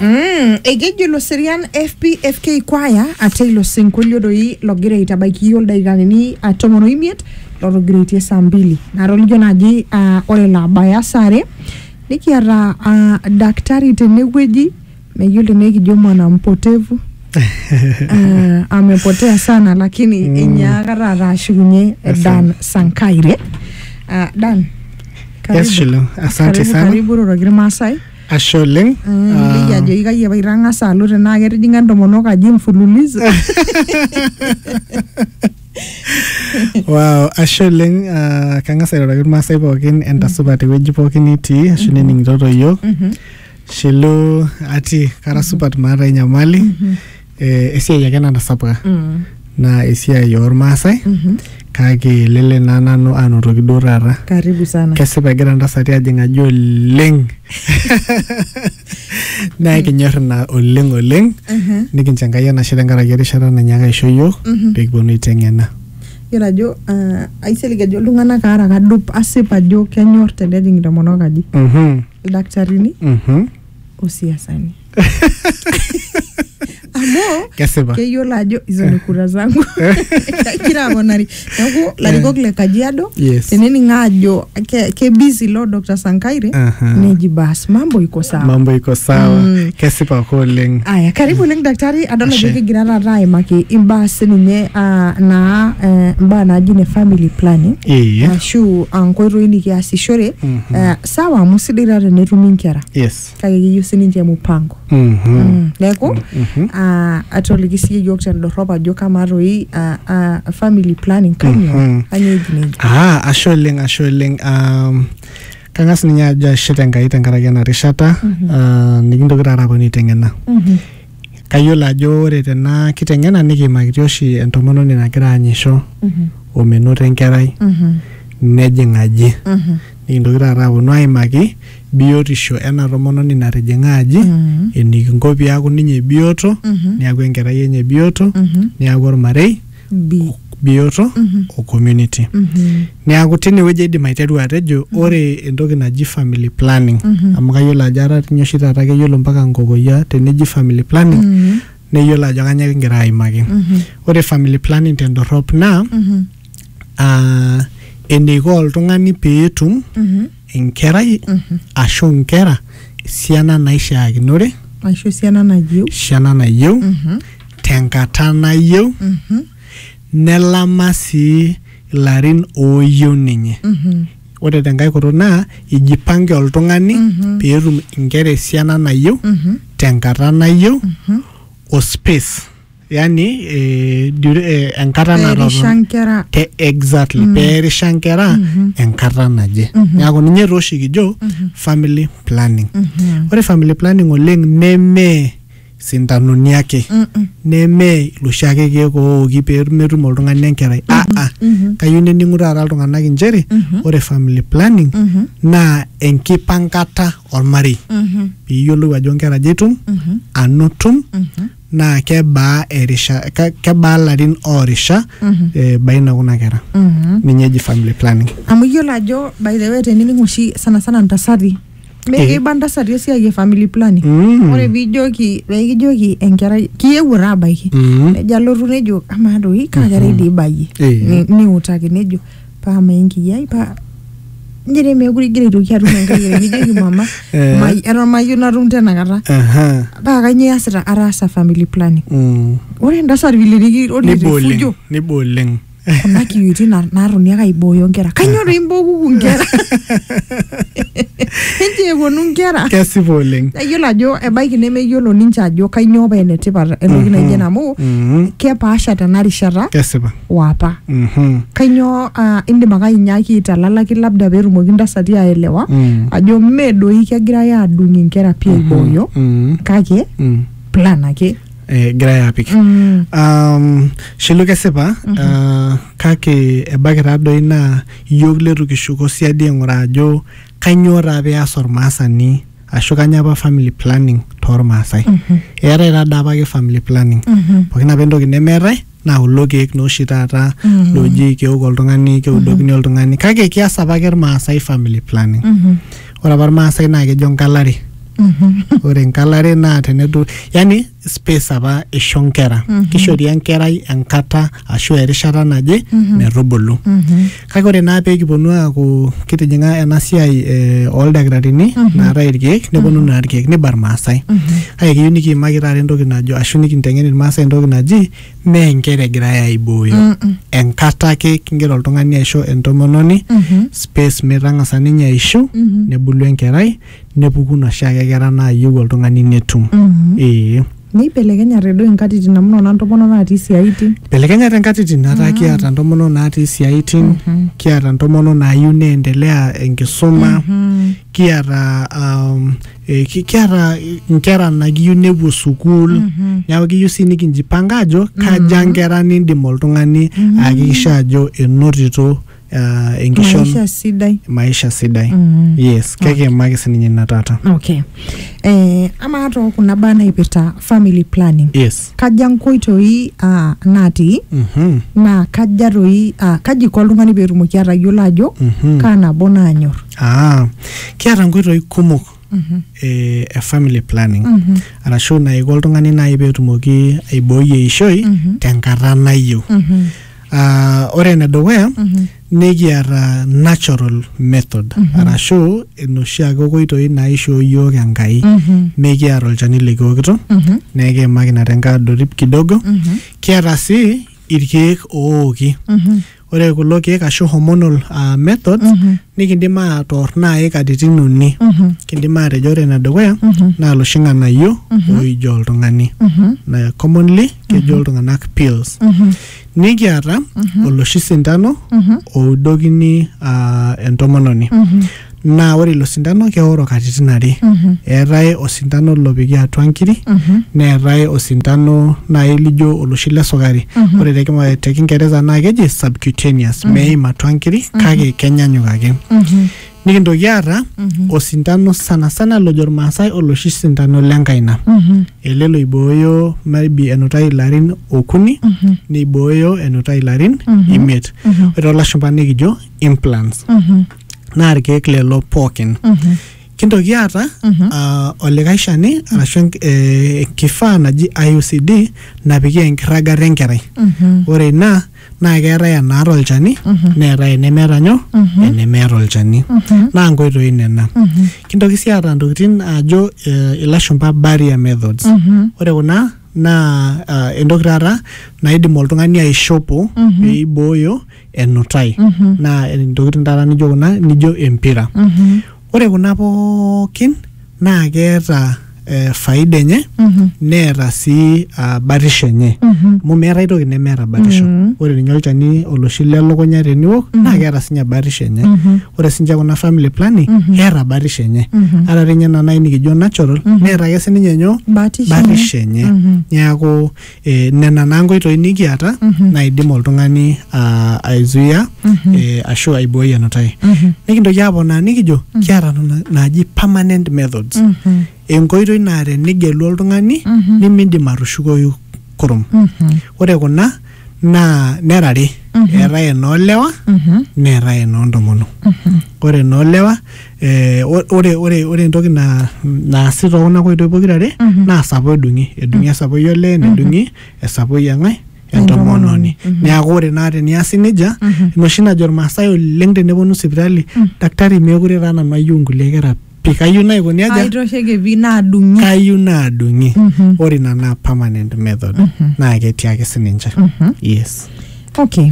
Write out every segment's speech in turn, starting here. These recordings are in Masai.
Mm, ekejo ilo serian fpfk kwaya ate ilo sinkolio doi logira aitabaiki iyiook ildakikani ah, tomon oimiet lotogiraitie saa mbili natolikio naaji ah, ore laabaya saa are nikiata ah, daktari tenewueji meyiolo tenaa ekijo mwana mpotevu Ah, amepotea sana lakini mm. inyaaka taata ashukunye eh, dan sankaire Ah, dan Yes, Shilo. Asante Karibu, sana. karibu iroroki irmaasai Ashe oleng. liki Ah, ajoki kai apa itang'asa alo tenaa ketijing'a entomonok aji mfululizo Wow, ashe oleng. Ah, Kang'as airoroki irmaasai pookin entasupa tewueji pookin nitii ashu nening'itoto iyiook. Shilo ati kara supat maata enyamali. eh, esiai ake natasapuka Mm. naa esiai oormaasai Mhm. kake lele naa nanu anotoki duo taata karibu sana kesipa egira ntasati ajing aji oleng naa kinyor ina oleng oleng Mhm. nikincho enkai enashe tenkaraki erishata nanyaaka aisho yiok Mhm. peekiponu aiteng'ena yiolo ajo ah, aisilig ajo iltung'anak aara kadup asip ajo kenyor tenejing intomonok aji Mhm. ildakitarini Mhm. osiasani amu kesipa keyiolo ajo hizo ni kura zangu kagira aponari neeku larikok le kajiado Yes. tenening ajo ke- kebisi lo dr sankaire Aha. neji bas mambo iko sawa mambo iko sawa Mm. kesipa ake oleng aya karibu oleng daktari adol ajo Ashe. kigira taata aimaki imbaa sininye ah, naa eh, imbaa naaji ne family planning Ee. ashu ah, nkoitoi nikiasishore Mhm. eh, sawa amu sidai taa tenetumi inkera yes kake keyieu sininche mupango Mhm. Mm, neeku Mhm. ah, atoliki siyie yiok tendorrop ajo kamaa toi ah, ah, family planning kanyoo Mhm. kanyoo eji nejia Ah, ashe oleng ashe oleng um, kang'as ninye ajo ashe tenkai tenkaraki ena rishata Mhm. ah, nikintoki taata aponu aiteng'ena Mhm. Kayiolo ajo ore tena kiteng'ena nikiimakitia oshi entomononi nagira aanyisho omenoto enkerai nejing aji. Nikintoki taata aaponu aimaki biotisho ena tomononi natijing'a aji, enikinko peaku ninye bioto, neaku enkerai enye bioto, neaku olmarei. bi bioto o community niaku tinewueji aidim aiteru atejo ore entoki naji family planning amu kayiolo ajo etaa tinye oshi taata keyiolo mpaka nkokoyia teneji family planning neyiolo ajo kanyoo kingira aimaki ore family planning tendorrop naa uh, eneiko oltung'ani peetum enkerai ashu inkera esiana naishaakinore aisho esiana nayieu esiana nayieu tenkata nayieu nelama sii ilarin ooyieu ninye ore tenkae kutuk naa ijipange oltung'ani peetum inkera esiana nayieu tenkata nayieu o space yani eh, dure- eh, enkata Perisha natotona nkera te exactly mm. peerisha nkera mm -hmm. enkata naje mm -hmm. neaku ninye taa oshi kijo mm -hmm. family planning mm -hmm. ore family planning oleng neme sintanoni ake mm -mm. neme iloshi ake keek ooki pee metum oltung'ani enkerai mm -hmm. aa mm -hmm. kayieu nening'u taata iltung'anak inchere mm -hmm. ore family planning mm -hmm. naa enkipankata olmarei mm -hmm. piiyiolou ajo nkera aja itum mm -hmm. anotum mm -hmm. naa kebaa erisha ke- kebaa larin oorisha eh, baina kuna kera ninye eji family planning amu iyiolo ajo by the way tenining oshi sana sana ntasati Eh. mekiba ntasati esiai e family planning Mm. ore pijoki pekijoki enkerai kiyewuo taa abaiki Mm. nejo alotu nejo amaa doi kaa kerai dii ibayie Eh. Ni- niutaki nejo paa ama enkiyiai paa nji dei meekure igira aitoki atum enkai ae nijoki mama Eh. mai- eton mayieu natum tenakata Aha. paa kainyoo iasita ataasa family planning Mm. ore entasat vile niki- ore Niba oleng. refujo Niba oleng. kuna kiyuti na- naatoni ake aibooyo nkera kainyoo doi imbokuku nkera enche eponu nkera Kesipa oleng. nayiolo ajo ebaiki nemeyiolo ninche ajo kainyoo paa enetipat entoki Mhm. naijo ena amu Mhm. kepaasha tena rishata Kesipa. o apa. Mhm. Kainyoo ah, indim ake ainyaaki aitalalaki labda peetumoki ntasati aelewa Mm. ajo mme doi kegirai aadung inkera pii aibooyo Mm. kake Mm. plan ake. Eh, egirai apik Mm. um, shilu kesipa uh, kake ebaiki taadoi naa iyiok letu kishuko siadi aing'uraa ajo kainyoo taa peas ormaasani ashu kanya apa family planning tormaasai eetae taa daa apake family planning Mhm. pookin apa entoki nemeetae naa kulo keek naa oshi taata looji keok oltung'ani keudokini oltung'ani kake kias apa ake irmaasai family planning Mhm. ore apa irmaasai naa kejo nkalare Mhm. ore enkalare naa tenedu yani space apa isho nkera Mhm. kishori enkerai enkata ashu erishata naje Mhm. metubulu Mhm. Kake ore naa pee kiponu aaku kitijing'a ena siai eh, ooldakitarini naatae irkeek neponu naa irkeek niba irmaasai. Kake kiyieu nikiimaki taata entoki najo ashu nikinteng'en irmaasai entoki naji mee inkera egirae aibooyo. Enkata ake kigira oltung'ani aisho entomononi space metang'asa ninye aishiu nebulu enkerai nepuku noshiake kera naayieu oltung'ani netum Mhm. ee Neibelekenyate duo inkatitin amu nona ntomonok natii isiaitin. belekenyate nkatitin ataa kiata ntomonok naatii siaitin kiata ntomonok naayieu neendelea enkisuma kiata um, eh, ki- kiata nkera nakiyieu nepuo sukuul neeku kiyieu sii nikinjipanga ajo kaja nkera nindim oltung'ani aakikisha ajo enotito ah, enkishon maisha sidai maisha sidai Mm. yes kekiimaki sininye ina taata okay eh, amaa too kuna baa naipirta family planning yes kaja nkoitoi ah, natii Mhm, naa kaja toi ah, kaji iko oltung'ani peetumoki atayiolo ajo mhm. kaa nabo naanyor ah, kiata nkoitoi kumok Mhm. e, e family planning Mhm. arashu naiko oltung'ani naaji peetumoki aibooi eishoi Mhm. tenkata nayieu Mhm. Ah, ore enedukuya Mhm. nikiata natural method Mhm. arashu enoshi ake okoitoi naishoo yiok enkai Mhm. nikiata olchani likiokito Mhm. nekiimaki ina tenkae adorip kidogo Mhm. kiata sii irkeek ooki Mhm. ore kulo keek ashu hormonal uh, methods mm -hmm. nikindim atoor naai katitin uni mm -hmm. kindim aatejo ore enedukuya mm -hmm. naa loshi ng'anayio mm -hmm. oijo oltung'ani mm -hmm. na commonly kejo mm -hmm. iltung'anak pills mm -hmm. nikiata mm -hmm. oloshi sintano mm -hmm. oudokini uh, entomononi mm -hmm. naa ore ilo sindano keoro katitin are Mhm. eetae osindano lopiki atua nkiri Mhm. neetae osindano nai lijo oloshi le sukari Mhm. ore te kima- te kingereza naa keji subcutaneous meim atua nkiri kake kenyanyuk ake Mhm. nikintoki aata Mhm. osindano sanasana lojo irmaasai oloshi sindano lenkaina Mhm. ele loibooyo maybe enutai ilarin okuni Mhm. neibooyo enutai ilarin Mhm. imiet Mhm. ore toolashumpa nikijo implants Mhm. naa irkeek lelo pookin Mhm. kintoki aata Mhm. ah, olikae shani arashu enk- eh, enkifaa naji IUCD napiki enkirragata enkerai Mhm. ore ina naa keetae enaata olchani Mhm. neetae enemeeta nyoo Mhm. enemeeta olchani Mhm. naa nkoitoi nena Mhm. kintoki sii aata ntokitin ajo eh, ilashumpa barrier methods Mhm. ore kuna naa ah, entoki taata naidim oltung'ani aishopo Mhm. peibooyo enutai Mhm. naa ntokitin taata nijo kuna nijo empira Mhm. ore kuna pookin naa keeta eh, faida enye Mhm. neeta sii ah, batisho enye Mhm. amu meetae toki nemeeta batisho Mhm. ore ninye olchani oloshi lelukunya teniwok naa keeta sinye batisho enye Mhm. ore sinche kuna family planning Mhm. keeta batisho enye Mhm. ata tinye ena nai nikijo natural Mhm. neeta ake sininye nyoo Batisho. batisho enye Mhm. niaku E, nena naa nkoitoi nikiata naidim oltung'ani aa, aizuia e, ashu aibooi enutai nikintoki aponaa nikijo kiata nena naaji permanent methods enkoitoi naa tenigelu oltung'ani nimindim atushukoyu kurum ore kuna naa nera are eetae enoolewa neetae enoontomonok ore enoolewa eh, o- ore ore ore entoki na naasi too kuna koitoi pokira are Mhm. naa sapoi edung'i edung'i esapoi olee nedung'i esapoi eng'ae entomononi Entomononi. Mhm. neaku ore naa teniasi nejia Mhm. inoshi najo irmaasai oleng teneponu sipitali Mm. daktari meekure taa nanu ayieu nkulie kera pi kayieu naikoni aja aitosheke pi naadung'i kayieu naadung'i Mhm. ore ina naa permanent method Mhm. naa ketii ake sininche Mhm. yes okay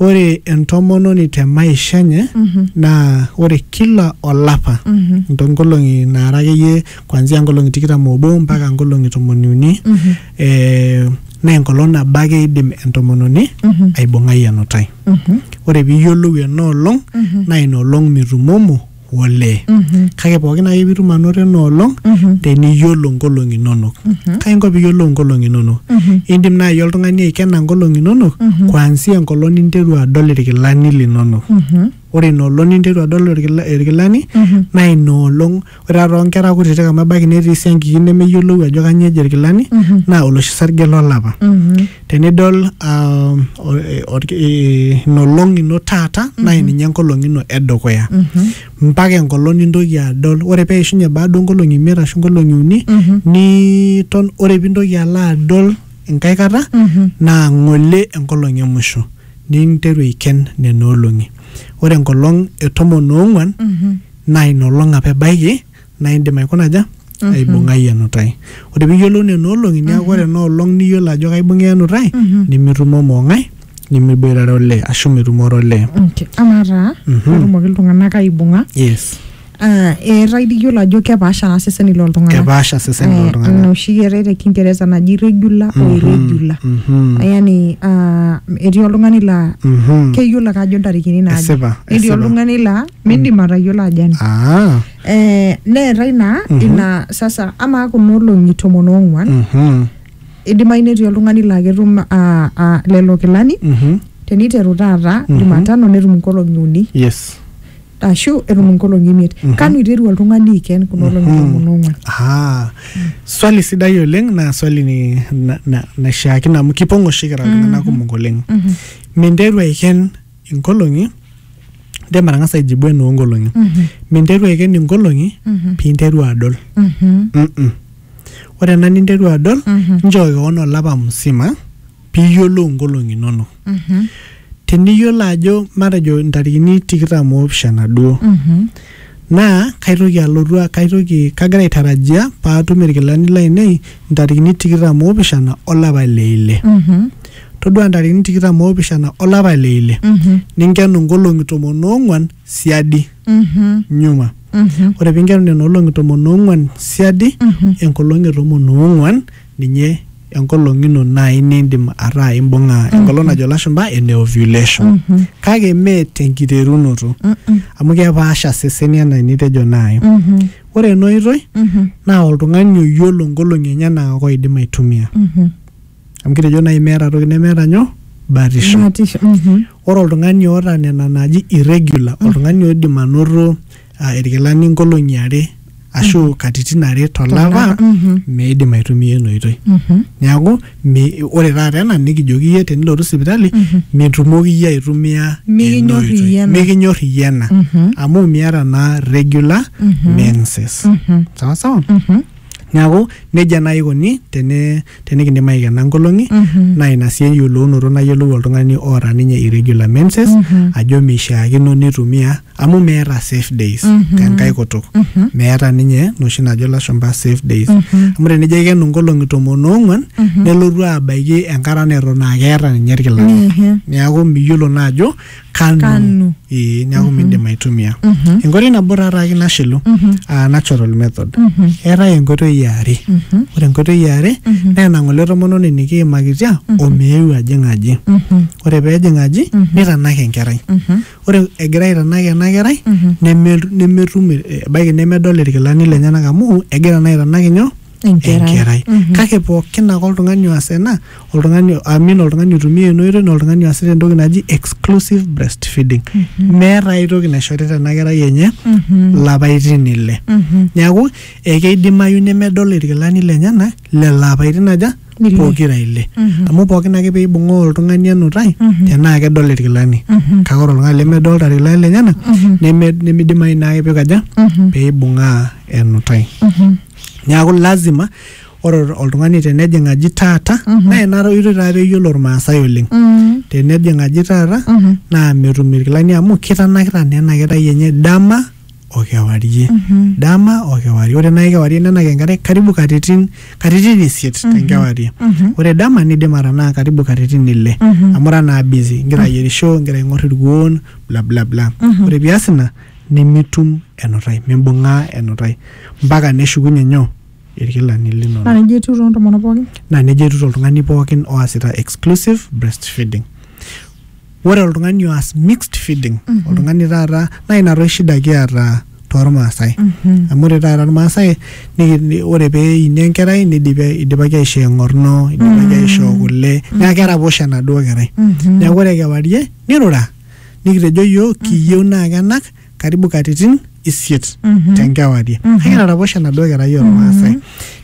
Ore entomononi te maisha enye naa ore kila olapa ntonkolong'i naara akeyie kuanzia nkolong'i tikitam oobo mpaka nkolong'i tomoni uni eh, naa enkolong nabo ake eidim entomononi aibung'ai enutai. Ore piiyiolou ena olong naa ina olong mitumomo olee kake pookin ake pitum anoto ena olong teniyiolo nkolong'i inonok kai inko piyiolou nkolong'i inonok indim naaji oltung'ani aikena nkolong'i inonok kuanzia enkolong ninteru adol irkilani linonok ore ina olong ninteru adol irkila- irkilani naa ina olong ore taa toonkera kutitik amu ebaiki netii siankiki nemeyiolou ajo kanyio eji irkilani naa oloshi sarge lolapa tenidol um, o- e- orki- e- ina olong ino taata naa ninye enkolong ino edukuya mpaka enkolong nintoki adol ore peishunye baada onkolong'i imiet ashu nkolong'i uni niton ore pintoki alo adol enkae kata naa ng'ole enkolong e musho ninteru aiken nena olong'i ore enkolong e tomon oong'uan naa ina olong apa ebaiki naa indim aikuna aja Mhm. aibung'ai enutai ore piiyiolou nena olong'i neeku ore ena olong niyiolo ajo kaibung'a enutai Mhm. nimitumomo ong'ae nimiboitare olee ashu mitumore olee Okay. amaa taa Mhm. petumoki iltung'anak aibung'a yes ah, eetae dii iyiolo ajo kepaasha naa seseni loltung'anak kepaasha seseni Eh, ina loltung'anak oshi eetae te kingeresa naji regular o Mhm. irregular Mhm. yani ah, etii oltung'ani laa Mhm. keyiolo ake ajo ntarikini naaje esipa netii esipa oltung'ani laa midim atayiolo ajo ena ah eh, neetae naa ina sasa amaa kuna olong'i tomon oong'uan Mhm. idimayu netii oltung'ani laa ketum ah, ah, lelo kilani Mhm. teniteru taata Mhm. jumatano netum inkolong'i uni yes ashu etum inkolong'i imiet Mhm. kanu iteru oltung'ani aiken kuna olong'i Mhm. tomon oong'uan Ah, swali sidai oleng naa swali ni- na- na- naishiakino amu kipong oshi kira iltung'anak kumok oleng Mhm. minteru aiken inkolong'i indim atang'asa aijibu enoo nkolong'i minteru aiken inkolong'i piinteru adol Mm-mm. ore ena ninteru adol nchoo kewon olapa musima piiyiolou inkolong'i inonok teniyiolo ajo matejo intarikini tikitam oopishana duo Naa kaitoki alotu, kaitoki, kagira aitarajia pee atum ilkilani laainei intarikini tikitam o opishana o lapa le ile. Todua intarikini tikitam o opishana o lapa le ile, ninkenu inkolong'i tomon o ong'uan siadi, nyuma. Ore pee inkenu nena olong'i tomon o ong'uan siadi, enkolong' e tomon o ong'uan, ninye enkolong ino naai niindim ataa imbung'a enkolong najo ilashumba ene ovulation kake mee tenkiterunoto amu kepaasha seseni enaa enitejo naai ore ena oitoi naa oltung'ani oyiolo inkolong'i enyenak ake oidim aitumia amu kitejo naai meeta toki nemeeta nyoo batisho Batisho. Mhm. ore oltung'ani oota nena naaji irregular oltung'ani oidim anoto ah, irkilani nkolong'i are ashu katitin are tolapa Tolapa, mhm. meidim aitumia ina oitoi Mhm. neeku mi- ore taata ena nikijoki iyie tenilotu sipitali mitumoki iyie aitumia Mikinyor ena oitoi. iyie ena. mikinyor iyie ena Mhm. amu miata naa regular Mhm. menses Mhm. sawa sawa Mhm. neeku nejia naaji ikoni teni- tenikindim aikena nkolong'i Mhm. naa ina sii eyiolounoto nayiolou oltung'ani oota ninye irregular menses Mhm. ajo meishiakino nitumia amu meeta safe days tenkae kutuk meeta ninye noshi najo lashumpa safe days amu tenijo aikenu nkolong'i tomon oong'uan nelotu abaiki enkata neton aa keeta ninye irkilani neeku miyiolo naa ajo kanu Kanu. ee neeku miindim aitumia enkoitoi nabo taa taake nashilu aa natural method eetae enkoitoi eare ore enkoitoi eare naa ena ng'ole tomononi nikiimakitia omeeu ajing aji ore peejing aji nitanak enkerai ore egira aitanak ena kerai neme- nemetum eh, ebaiki nemedol irkilani lenyenak amu egira naa aitanak inyo Enkerai. Mhm. kake pookin ake oltung'ani oas ena oltung'ani amin oltung'ani oitumia ena oitoi naa oltung'ani oasita entoki naji exclusive breastfeeding meeta ai toki naishorita ena kerai enye lapaitin ile Mhm. neeku ekeidimayu nemedol irkilani lenyenak lelo apaitin aja Nile. pokira ile Mhm. amu pookin ake peibung'oo oltung'ani enutai Mhm. tenaa kedol irkilani Mhm. kake ore oltung'ani lemedolta irkilani lenyenak Mhm. neme- nimidimayu naake pikaja Mhm. peibung'aa enutai Mhm. neaku lazima ore oltung'ani tenejing aji taata Mhm. naa ina oitoi taa peyiolo irmaasai oleng Mhm. tenejing aji taata Mhm. naa metum irkilani amu kitanakita naa ena kerai enye dama o kewarie dama o kewarie ore naaji kewarie nenang enkare karibu katitin katitin isiet tenkewarie ore dama nidim atanaa karibu katitin ile amu ira naa busy ingira ayierisho ingira aing'or irkuon bla bla bla ore pias ina nimitum enutai mimbung'aa enutai mpaka neshukunye nyoo irkilani linonok naa nejia etiu toontomonok pookin naa nejia etiu toltung'ani pookin oasita exclusive breastfeeding Ore oltung'ani oas mixed feeding oltung'ani taata naa ina toi shida kiata tormaasai amu ore taata irmaasai niki- ni- ore pee eini enkerai nidipi ai- idipaki aishoo eng'orno idipaki aishoo kule neeku keraposho enaduo kerai neeku ore kewarie nirura nikitejo iyiook kiyieu naa kenak karibu katitin isiet Mhm. tenkewarie Mhm. kake etaraposhe enaduo kerai ormaasai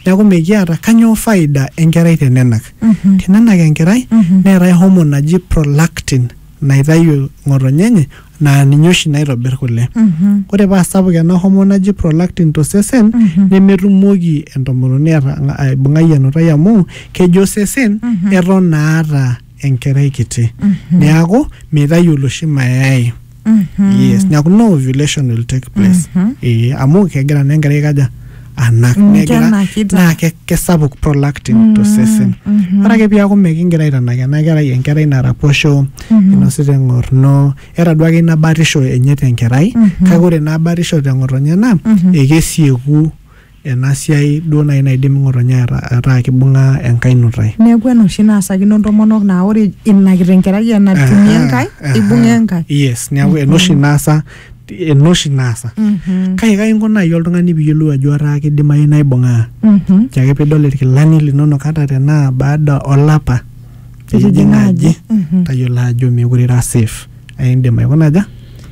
neeku mikiata kanyoo faida enkerai tenenak Mhm. tenenak enkerai Mhm. neetae homo naji prolactin naitayu ng'otonye enye naa ninye oshi naitobir kule Mhm. ore paa sapuk ena homo naji prolactin tosesen Mhm. nemetumoki entomononi ata- aibung'ai enutai amu kejo osesen Mhm. eton naata enkerai kiti neaku meitayu oloshi mayai yes neaku no ovulation will take place ee amu kegira naa enkerai aikaja anak Mm, negira kenakita. naa ke- kesapuk prolactin tosesen ore ake piaku mekingira aitanak ena kerai enkerai naraposho inosita eng'orno eeta duake ina batisho enye tenkerai kake ore naa batisho teng'otonye naa ekesieku ena siai duo naaji naidim ng'otonye ataa kibung'a enkae nutai. Neeku ena oshi naasakino ntomonok naa ore ina kitenkerai enatumie enkae eibung'a enkae. Yes, neeku ena oshi naasa ena oshi naasa. Kake kai inko naaji oltung'ani piiyiolou ajo etaa kidimayu naa ibung'aa? Ore ake piidol irkilani linonok ata tenaa baada olapa litijing'a aji tayiolo ajo meekure ira safe aindim aikuna aja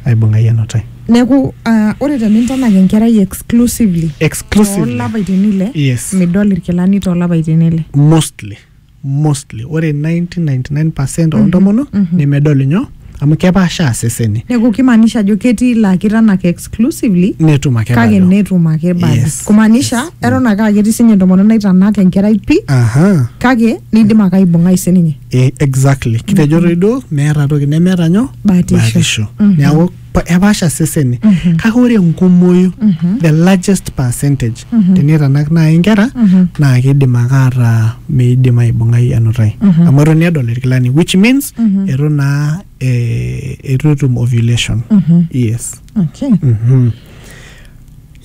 aibung'ai enutai neeku ah, ore tenintanak enkerai exclusively exclusively toolapaitin ile Yes. midol irkilani toolapaitin ile mostly mostly ore 99.99% oontomonok nemedol inyoo amu kepaashaa seseni neeku kimaanisha ajo ketii laa kitanak exclusively netum ake kake bado. netum ake bado Yes. kumaanisha eton ake aa ketii sinye entomononi naitanak enkerai pi Aha. kake nidim ake aibung'ai sininye Eh, exactly kitejo toi duo meeta toki nemeeta nyoo Batisho. Mhm. neeku pa- epaasha seseni Mhm. kake ore enkumoyu Mhm. the largest percentage Mhm. tenitanak naaji inkera Mhm. naa kidim ake ataa meidim aibung'ai enutai Mhm. amu eton edol irkilani which means Mhm. etu naa eh, etu etum ovulation Mhm. yes Okay. Mhm.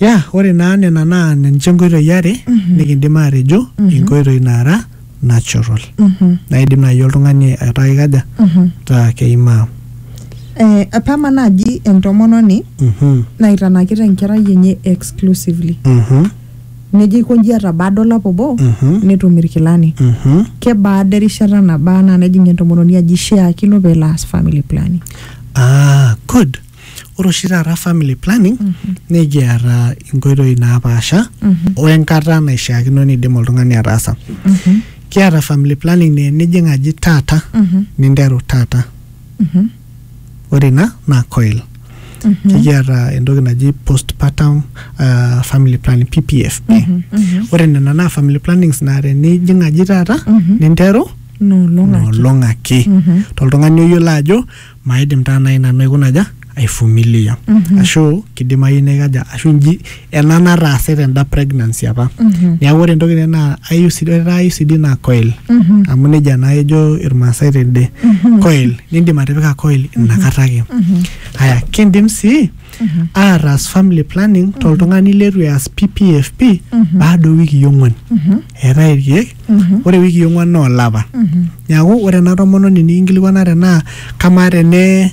ya ore naa nena naa ninche nkoitoi are nikindim aatejo inkoitoi naara natural Mhm. naidim naaji oltung'ani ataa ikaja Mhm. taa keimaa Eh, apama naaji entomononi Mhm, naitanakita enkerai enye exclusively mhm, nejo aikonji atabaada olapa obo mhm, netum irkilani mhm. kebaada erishata nabaa naa nejing entomononi aji ishiakino peelo aas family planning Ah, good ore oshi taata family planning nikiata inkoitoi napaasha o enkata naishiakino nidim oltung'ani ataasa kiata family planning naa enijing aji taata ninteru taata ore ina naa coil nikiata entoki naji postpartum uh, family planning ppf ore nena naa family plannings naa tenijing aji taata ninteru nolong ake toltung'ani oyiolo ajo maidim taa nai nanu aikuna aja aifumilia ashu kidimayu naikaja ashu nji ena nataase tenda pregnancy apa niaku ore entoki nai naa IUCD ore taa IUCD naa coil amu nejia naa ejo irmaasai tende coil nindim atipika coil inakata ake aya kindim sii ataas family planning toltung'ani letu eas PPFP baada owikii ong'uan eetae irkeek ore wikii ong'uan naa olapa neaku ore ena tomononi nikinkilikuana tenaa kamaa tene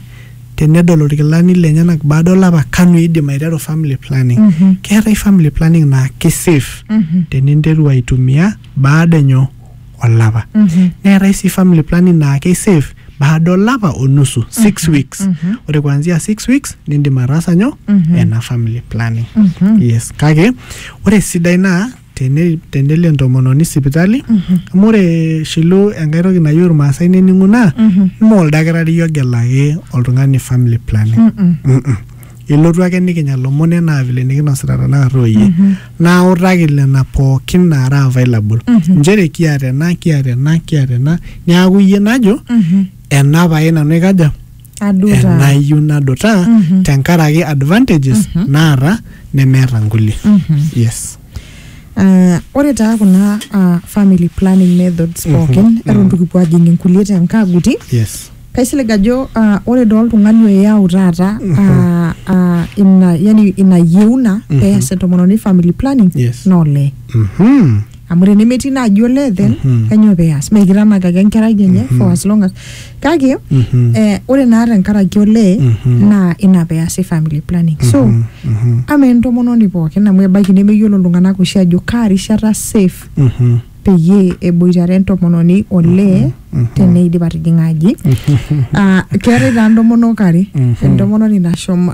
tenedol irkilani lenyenak baada olapa kanu eidim aiteru family planning keetae family planning naa ki safe teninteru aitumia baada enyoo olapa neetae sii family planning naa kei safe baada olapa onusu six weeks ore kuanzia six weeks nindim ataasa nyoo ena family planning yes kake ore esidai naa tene tenelo entomononi sipitali amu ore shilu enkae toki nayieu irmaasai nening'u naa ime oldakitari ogelaki oltung'ani family planning Mm-mm. ilotu ake nikinya lomon enaa vile nikinosita tenakata oyie nautaki lena pookin naara available nchere kiata ena kiata ena kiata ena niaku iyie najo ena pae nanu aikaja aduta enayieu nadutaa Mhm. tenkaraki advantages Mhm. naata nemeeta nkulie Mhm. yes Ah, ore taa kuna ah, family planning methods Mhm, pookin mhm. eton itu kipuo ajing inkulie tenkaguti yes kaisilig ajo ah, ore doo oltung'ani oyau taata ah, ah, ina yani ina yieuna Mhm. pees entomononi family planning Yes. naa olee Mhm. amu tenemetii ina aji olee then Mhm. kanyoo peas meikitanak ake enkerai enye Mhm. for as long as kake Mhm. eh, ore naa tenkaraki olee Mhm. naa ina peasi family planning so Mhm, mhm, ama entomononi pookin amu ebaiki nemeyiolo iltung'anak oshi ajo kaa rishata safe mhm, peyie eboitare entomononi olee mhm. teneidip atijing'a aji Ah, keetae taa ntomonok are Mhm. entomononi nashomo